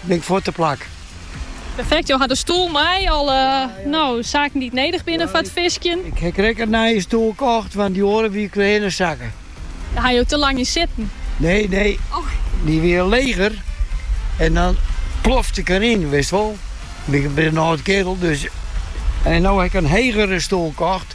Big foar te plak. Perfekt, jo hat de stoel mei alle no, zaken dy't nedich binne foar it fiskjen. Ik heb krekt in nije stoel kocht, want dy oare wie trochhinne sakke. Dêr ha jo te lang yn sitten. Nee, nee. Oh. Dy wie leger. En dan plofte ik deryn, witst wol. Ik bin in âld keardel, dus... En no ha ik in hegere stoel kocht.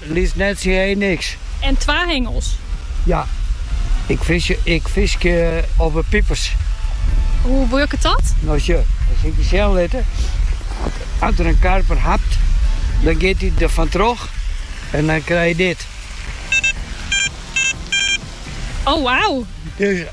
Lies net tsjin hee niks. En twa hingels. Ja, ik fiskje op 'e pipers. Hoe wurket dat? No sjoch, sil ik dy sjen litte, as der in karper hapt, dan giet dy der fan troch en dan krij je dit. Oh wow!